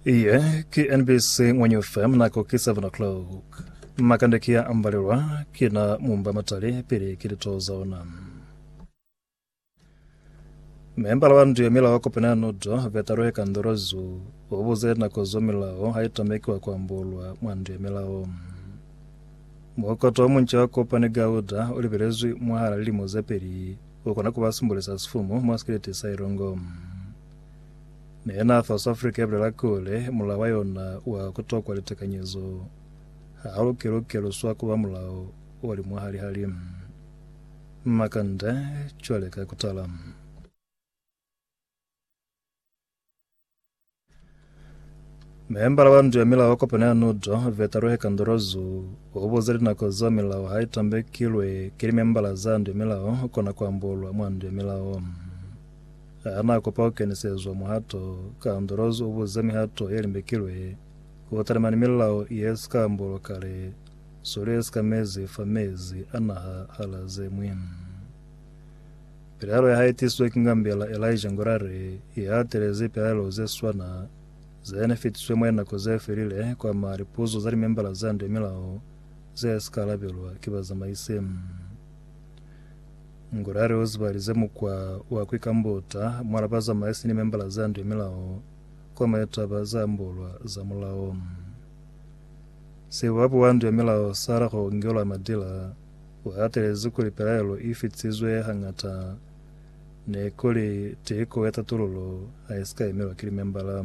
Iye ki NBC Ngwenye FM nako ki 7 o'clock. Makande ki ya ambalelwa ki na mumba matali pili ki lito za ona. Membala wa ndu ya milao wa kopana ya nodo Betaro ya Kandorozu o buze nako zo milao ha itamekiwa ku ambolwa mwa ndu ya milao. Mokoto wa munca wa kopane Gauda o libelezwi mwahala lilimo ze peli U kona ku ba sumbulisa sifumu mwa sikeleti sa ilungu. Mi yena South Africa ya bulela kuli, Mulao wa yona wa ku tokwa litekanyezo ha lu ki lu keluswa ku ba mulao o li mwahali-hali. Makande, cwale ka kutala. Member wa ndu ya milao wa kopano ya nudo vetaruhe kandorozu ubuza linako zo milao ha itambekilwe kili membala za ndu ya milao kona kuambolwa mwa ndu ya milao ana kopa kukenisezwa muhato kandorozu ubuza mihato ye limbekilwe kutalima ni milao ye sika ambolwa kale sulu ye sika mezi fa mezi anaha hala zemwi Pilaelo ya hae tisizwe ki ngambela Elijah Ngurare i hatelezi pilaelo ze swana ze ne fitiswe mwa linako ze felile kwa ma lipuzo za limembala za nde milao ze si ka alabelwa ki bazamaisi. Ngurare u zibalize mukwa wa ku ikambota mwa la bazamaisi ni membala za nde milao kwa mwa litaba za ambolwa za mulao. Sibuabu wa nde milao sa la ku ngelwa madila. U hatelezi kuli pilaelo i fitisizwe hañata ne ku li tiko ya tatululo ha i si ka emelwa ki limembala.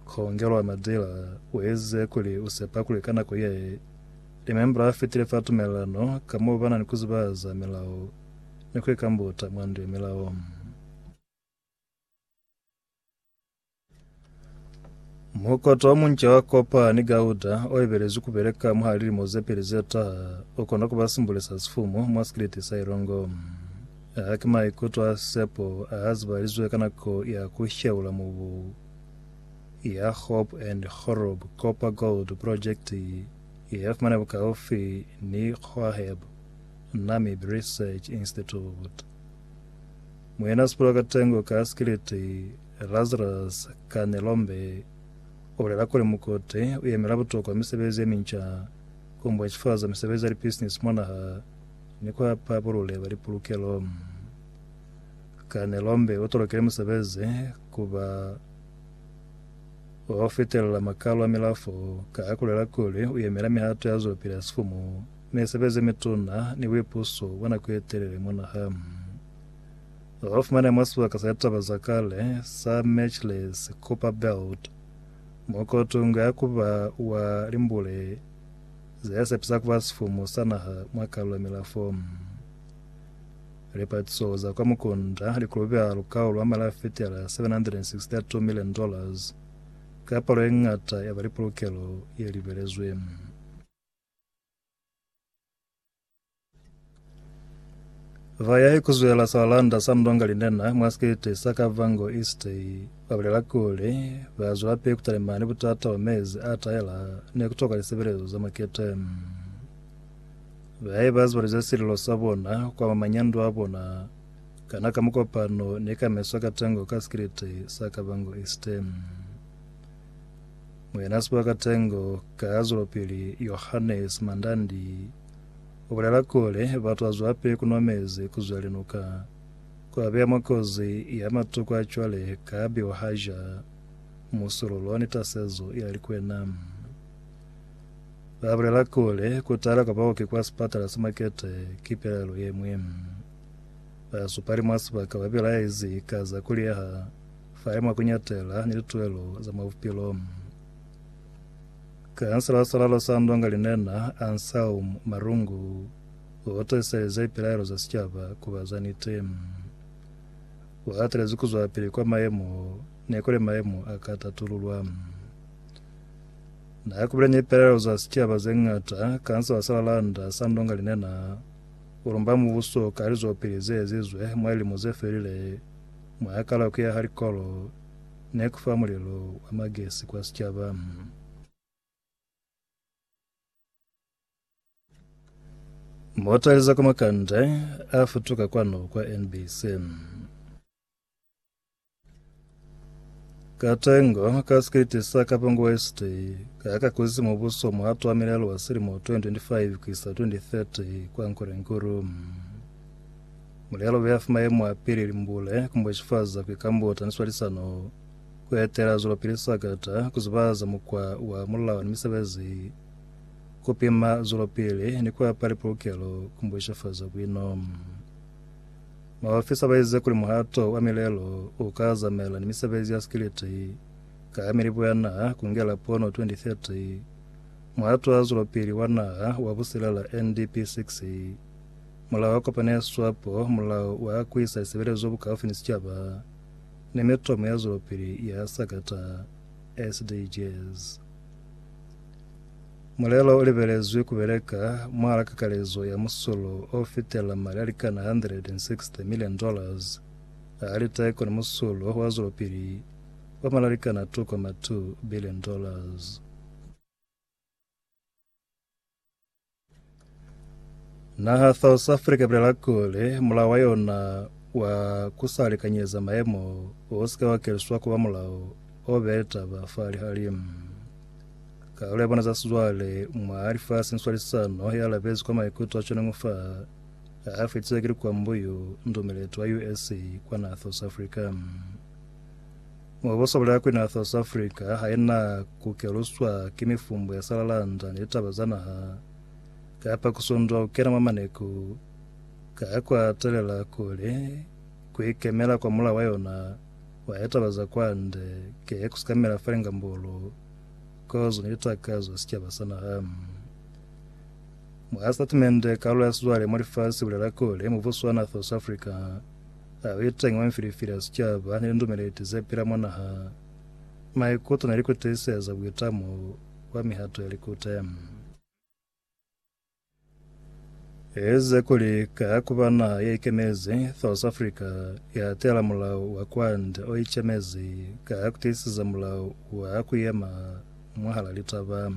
Khongelo a Madira u ezize kuli u sepa kuli ka nako ye, limembala a fitile fa tumelelano ka m'o ba na ni ku zibahaza milao ni ku ikambuta mwa ndu ya milao. Mukoto o munca wa kopa ni gauda o ibelezwi ku beleka mwa lilimo ze peli ze taha u kona ku ba simbule sa sifumu mwa sikiliti sa ilongo. A ki maikuto a sepo a a zibalizwe ka nako ya ku sheula mubu ya Hope and Horub Copper Gold Projekiti ye ya fumana bukaufi ni Khwaheb Namib Research Institute. Muena Sipula Katengo ka sikiliti Lazarus Kanelombe u bulela kuli mukote u yemela butokwa misebezi ye minca, ku mbwecifaza misebezi ya lipisinisi mwa naha ni ku hapa bulule bwa lipulukelo. Kanelombe u tolokile musebezi ku ba wa ku fitelela makalo a milafo ka ha ku lela kuli u yemela mihato ya zwelopili ya sifumu, misebezi ye mituna ni buipuso bwa nako ye telele mwa naha. Za lu fumana mwa sibaka sa litaba za kale sa Matchless Copper Belt, mo ko tunga ya ku ba wa limbule ze ya sepisa ku ba sifumu sa naha mwa kalu ya milafo. Lipatiso za kwa mukunda li kulubeha lukau lwa mali a fetela 762 million dollars ka palo ye ñata ya ba lipulukelo ye libelezwe. Vayahi kuzwela salanda sa Mndonga Linena mwa sikete sa Kavango East babulela kuli bazwelapili kutalima ni butata bwa mezi a tahela ni kutoka lisebelezo za makete. Bayahi bazibalize sililo sa bona kwa manyando a bona kana ka mukopano ni ka meso a katengo ka sikete sa Kavango East. Muena Sibaka Tengo ka ya zwelopili Yohannes Mandandi ubulela kuli batu azwape kunwa mezi kuzwelinuka, kuabeya mwa kozi ya matuku a cwale ka biwahaja, musululo ni tasezo ya likwena. Babulela kuli kutala kwa baoki kwa sipatala sa Makete ki pelelo yemwi. Basupali mwa sibaka babelaezi ka za kuliyeha Fa ye mwa ku ñatela ni lituelo za mwa bupilo. Kansela sa lalo sa Ndonga Linena, Ansaum Marungu, u tiiselezi pilaelo za sicaba ku ba za niti. U hatelezi ku zwapili kwa mayemo ne kuli mayemo a ka tatululwa. Na kubile ni pilaelo za sicaba ze ñata, kansela sa lalanda sa Ndonga Linena u lumba mubuso ka lizwapili ze ezizwe mwa lilimo ze felile Mwa hakalako ya halikolo ne ku fa mulelo wa magesi kwa sicaba. Mota liza kwa makande a futuka kwanu kwa NBC. Katengo ka sikiliti sa Kapongo West ka ka kuzi mubuso muhato wa milelo wa silimo 2025 kuisa 2030 kwa Nkorenkuru. Mulelo bia fa mayemo a pili limbule kumba cifaza ku ikambuta ni swalisano ku etela zwelopili sakata ku zibahaza mukwa wa mulao ni misebezi ku pima zwelopili ni ku apa lipulukelo kumba cifaza bwino. Maofisa ba ize kuli muhato wa milelo u ka azamela ni misebezi ya sikiliti ka ha Milibu ya Naha kungela pono 2030, Muhato wa Zwelopili wa Naha wa Busilela, NDP 6. Mulao wa kopano ya swapo, mulao wa ku isa lisebelezo bukaufi ni sicaba, ni mitomo ya zwelopili ya sakata, SDGs. Mulelo u libelezwi ku beleka mwahala kakalezo ya musulo o fitela mali a likana 160 million dollars a liteko ni musulo wa zwelopili wa mali a likana 2.2 billion dollars. Naha South Africa ibulela kuli mulao wa yona wa kusalikanyeza maemo o sika wa keliswa kuba mulao o bee taba fa lihali. Karolo ya bona za sizwale mwa lifasi ni swalisano ya labezi kwa maikuto a tshonengo fa a fetize ki likwambuyu ndumeleti wa USA kwa naha South Africa. Mubuso ulya kuli na South Africa haina kukeluswa ki mifumbo ya salalanda ni litaba za naha, kapa kusundwa kukena mwa maneku, ka kwa telela kuli kuikemela kwa mulao wa yona wa litaba za kwande ki kusikamela fela ngambulu, kozo ni litakazo za sicaba sa naha. Mwa sitatimende, kalulo ya sizwale mwa lifasi ibulela kuli mubuso wa na South Africa, A li teñi mwa mifilifili ya sicaba ni lindumeleti ze pila mwa naha, maikuto ne li kutiliseza buitamo bwa mihato ya likute. Elize kuli, Ka ku ba naha ye ikemezi, South Africa i latelela mulao wa kwande o icemezi ka ku tiiseza mulao wa ku yema mwahal'a litaba.